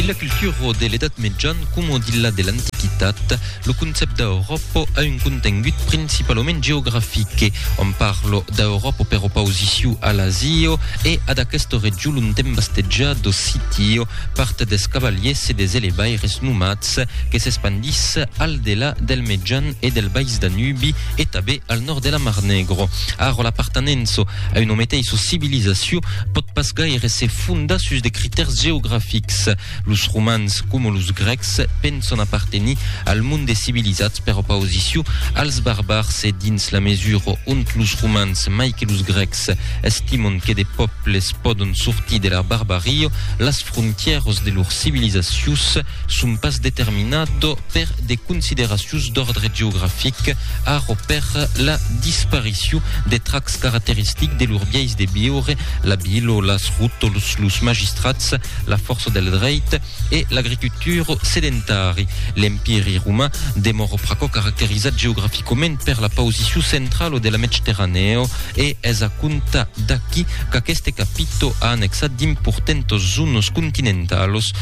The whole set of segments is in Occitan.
Dins la cultura de l'Edat Mejan coma dins la de l'Antiquitat, lo concèpte d'Auròpa a un contengut principalament geografic. Òm parla d'Auròpa per opausiciu a l'Asia e ad aquesta region ont èm bastejats d'Occitio, part des cavaliers e des elevaires nomats que s'espandís al delà del Mejan e del Bais Danubi e tanben al nòrd de la Mar Negro. Ara l'apartenença A una meteissa civilizacion pòt pas gaire se fondar sus de critèrs geografics. Los romans, coma los grècs, penson apartenir al mond des civilizats per opausicion als barbars e dins la mesura ont los romans, mai que los grècs, estimon que de pòbles pòdon sortir de la barbaria, las frontièras de lor civilizacius, Son pas determinat per de consideracions d'òrdre geografic, arro per la disparicion de trachs caracteristics de lor biais de viure, la vila, las rotols, los magistrats, la fòrça del dreit e l'agricultura sedentari. L'Empiri roman demòra pr'aquò caracterizat geograficament per la pausicion centrala de la Medcterranèo e es a comptar d'aqui qu'aqueste capito a annexat d'importentas zonas continentalas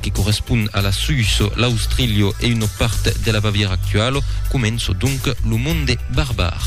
que correspon a la Suisse, l'Austrilio e una part de la Bavièra actuala, comença donc lo monde barbar.